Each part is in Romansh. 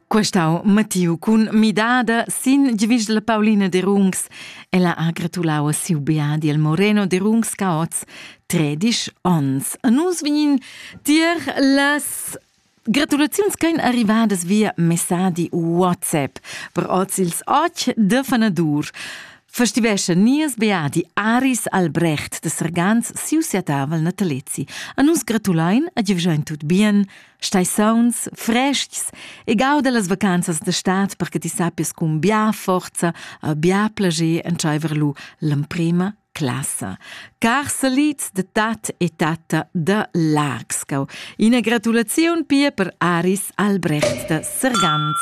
Questau Mattiu cun midada sin givischla Paulina de Rungs. Ella ha gratulau a siu beadi il Moreno de Rungs Caoz 13 onns. A nus vegnin tier las Gratulaziuns ch'ein arrivadas via messadi WhatsApp per oz ils och de fanadur. festivescha nies beadi Aris Albrecht de Sergans siu siatavel natalezi. A nus gratulein a giuvschein tut bien, stai sauns, frestgs e gauda las vacanzas de stat perche ti sappies cun bia forza a bia plager entscheiver lu l'emprema classa. Carselits da tat e tatta da Largsgau. Ina gratulaziun pia per Aris Albrecht da Sergans.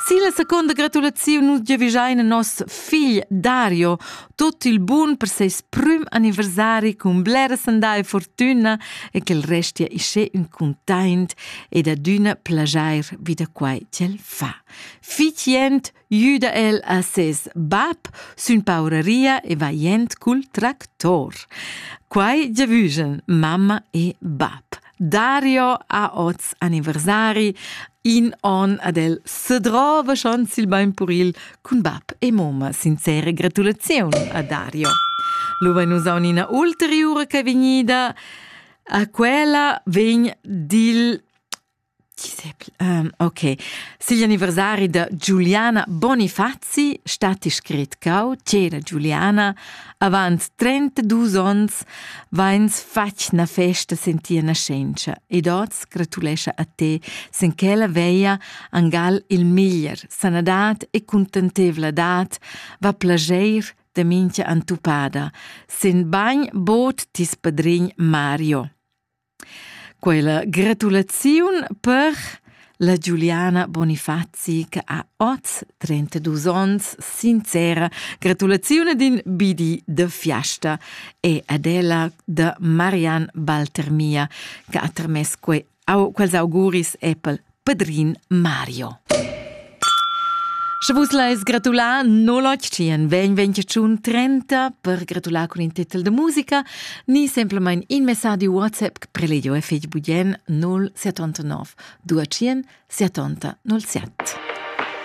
Silla seconda gratulaziun nus giavischein a nos figl Dario tot il bun per ses prum anniversari cun bleras andai fortuna e che el restia ische ün containt ed adüna plajair vi da quai ch'el fa. Fitient Güda el a ses bab sün pauraria e vajend cul tractor. Quai giavüschen mamma e bab. Dario ha hoz anniversari, in on ad el se drova schon sil bain puril cun bab e moma. Sincere gratulaziun a Dario. Lo vain usaun ina ulteriura che è vegnida. A quella vegn dil Ok. Sigl anniversari da Giuliana Bonifazzi statti scrit cau c'era Giuliana avant 32 ons vains fatg na festa sen tia nascenza ed oz gratulescha a te sen quella veia angal il miglier sanadat e contentevladat va plageir de mincha antupada sen bagn bod tis padrin Mario. Quella gratulaziun per la Giuliana Bonifazi che ha oz 32 onns sincera gratulazione d'in bidi de fiasta e ad ella de Marian Baltermia che ha termess quei quels auguris Apple Padrin Mario. Sche vus leis gratular no lotg tien vegn vegn tschun 30 per gratular con in titel de musica ni semplamein in messadi WhatsApp che preledio e fig budien 079 2 70 07.